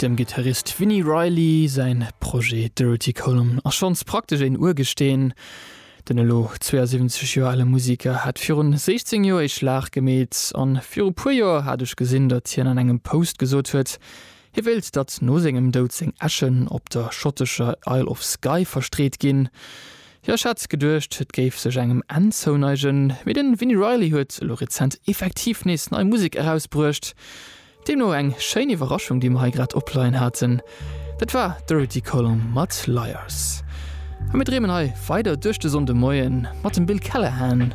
Dem Gittarist Vini Reilly säin Projet Dirty Column ass schonns praktesch een Urgesteen. Den elo 72 Joer ale Museker hat virun 16 Joer ee Schlag gemeet, an viru puer Joer hat ech gesinn, datt hien an engem Post gesot huet, Hie wéilt, datt no sengem Doud seng Äschen op der schottescher Isle of Skye verstreet ginn. Jo, ech hat geduecht, et géif sech engem Enn zouneigen, mee den Vini Reilly huet elo rezent effektiv nees nei Musek erausbruecht. Deemno eng schéin Iwwerraschung, déi mer hei grad opleien haten. Dat war Dorothy Colomb mat Liars. A mir dreemen hei weider duerch de Sonndemoien mat dem Bill Callahan.